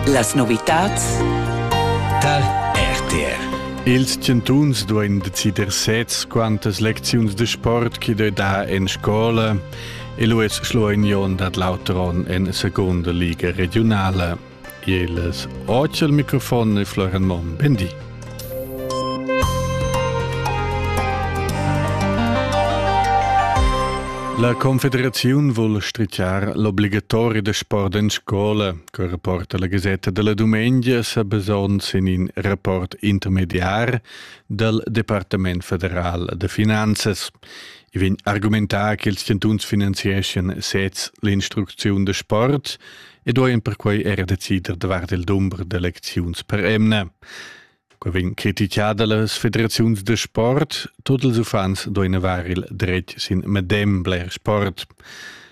Las novitads dal RTR Ils chantuns duain decider sez quantas lecziuns de sport che dai da en scola e Luis Schloignon dat l'auteron en seconda liga regionala. Il oce al microfon è Florian Monn. Bendi. La Confederaziun vul stritgar l'obligatori da sport en scola, che rapporta la Gazetta della Dumengia sa basons in in rapport intermediar dal Departament federal da finanzas. I vegn argumentà che ils chantuns finanzieschan sez l'instrucziun da sport ed duain perquai era decider davart il dumber d'elecziuns per emna. Quei vegn critichada las federaziuns da sport. Tut ils uffants duein haver il dretg sin medem bler sport.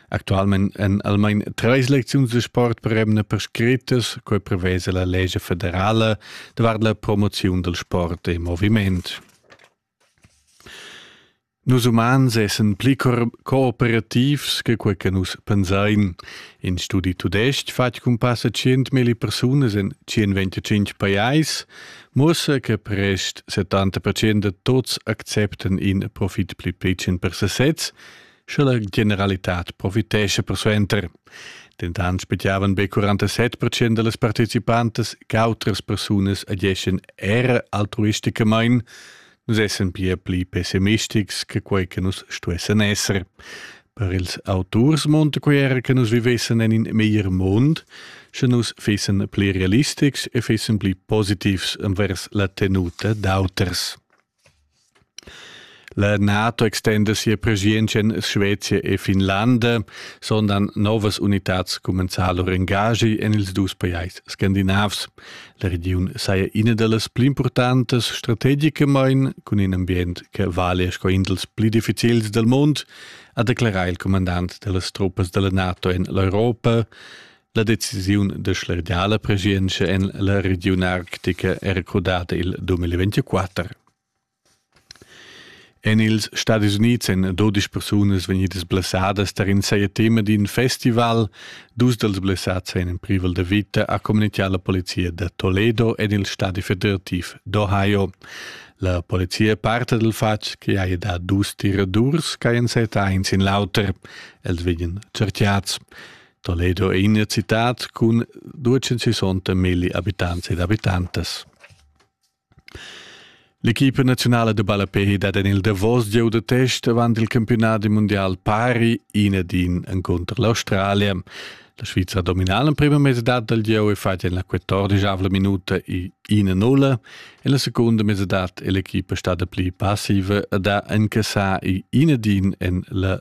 Actualment èn almain treis lecziuns de sport per emna prescrittas, quei prevesa la legge federala davart la promoziun del sport e moviment. Nus umans essan pli cooperativs che quei che nus pensein. In studi tudestg fatg cun passa 100.000 persunas en 125 pajais muossa che prest 70% de tots acceptan in profit pli picen per sesez, sche la generalitad profitesce persuenter. Dentant spettavan be 47% de las participantas che autras persunas ageschen era altruisticamain, Nus essan pia pli pessimistics che quei che nus stuessan esser. Per ils auturs monta quei era che nus vivessen en in meglier mund, sche nus fessen pli realistics e fessen pli positivs envers la tenuta d'auters. La NATO extenda sia preschientscha en Svezia e Finlanda, sondern novas unitads comenzar lur engagi en ils dus pajais scandinavs. La regiun saja ina da las pli impurtantas strategicamain cun in ambient che valia sco in dals pli difficils dal mund, ha declerà il comandant da las truppas da la NATO en l'Europa. La decisiun da schlergiar la preschientscha en la regiun arctica è recordada il 2024. En ils Stadis Unids èn dudesch persunas vegnidas blessadas tar in saja tema d'in festival. Dus dals blessads èn in privel da vita, ha communitgà la polizia da Toledo en il stadi federativ d'Ohio. La polizia parta dal fatg che haja dà dus tiradurs ch'hajan setà in sin l'auter. Els vegnan certiads. Toledo è ina citad cun 260 milli abitants ed abitantas. L'equipa naziunala da ballapè dat en il davos gieu da test avant il campiunadi mundial pari in ed in encunter l'Australia. La Sviza ha dominà l'emprima mesadad dal gieu e fatg en la 14 minuta i 1-0. En la secunda mesadad è l'equipa stada pli passiva ed ha incassà i 1-1 en la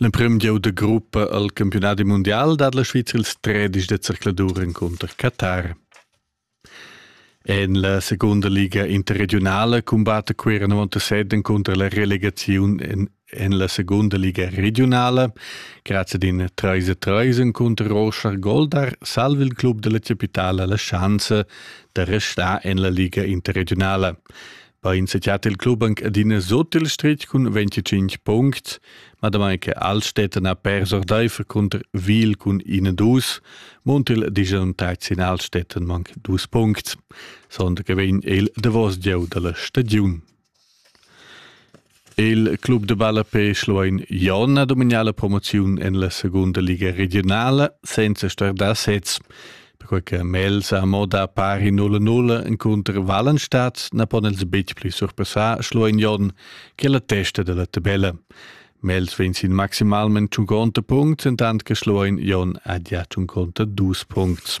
L'emprim gieu da gruppa al campiunadi mundial dat la Svizra ils tredisch da zercladur encunter Qatar. En la segunda liga interregionala cumbatta Cuira 97 encunter la relegaziun en, en la segunda liga regionala. Grazie ad in 3-3 encunter Rochar Goldar salva il club della capitale la chance da restare en la liga interregionala. Bein sechat il club anche adina sot il stretg cun 25 punct, ma damai che Altstätten ha pers ordeifer cunter Wiel cun 21, munt il digiun tacsin Altstätten manc dus punct. Sonda che vegn il davos gieu dalla stagiun. Il club de ballape Schluein Jon ha domignà la promoziun en la segunda liga regionala senza star da sez. Perquai che Mels ha moda pari 0-0 encunter Wallenstadt na pon els betg pli surpassar Schluein Jon che la testa della tabella. Mels vegn sin maximalment 50 punct, entant che Schluein Jon ha già 50 dus punts.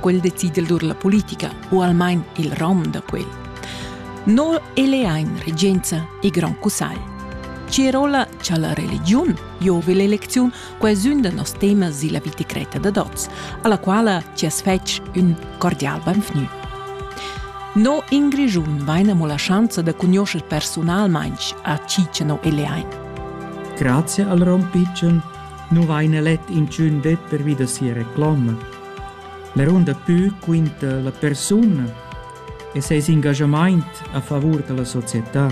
quel decidel dur la politica u almain il rom da quel. No elein regenza e grand cussagl. Cirola cha la religiun giove l'elecziun qua es ün da nos temas illa vita creta da tots, alla quala ci as fetsch ün cordial benvgnü. No in Grischun vaina mo la schanza da cugnoscher personalmainch a Ciceno e Leain. Grazie al Ron Pitschen, nu vaina let in tschün det pervi da sia reclama La runda pü quinta la persuna e seis engaschamaint a favur da la società.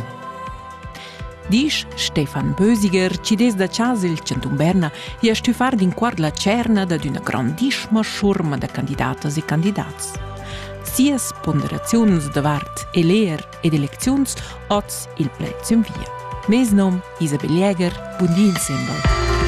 Disch Stefan Bösiger, chi dess da chasa il Chantun Berna, ha stü far d'inquart la tscherna dad üna grandissima schurma da candidatas e candidats. Sias ponderaziuns davart eleer ed elecziuns hoz il pled sün via. Mes nom Isabel Jäger, bun di il sembel.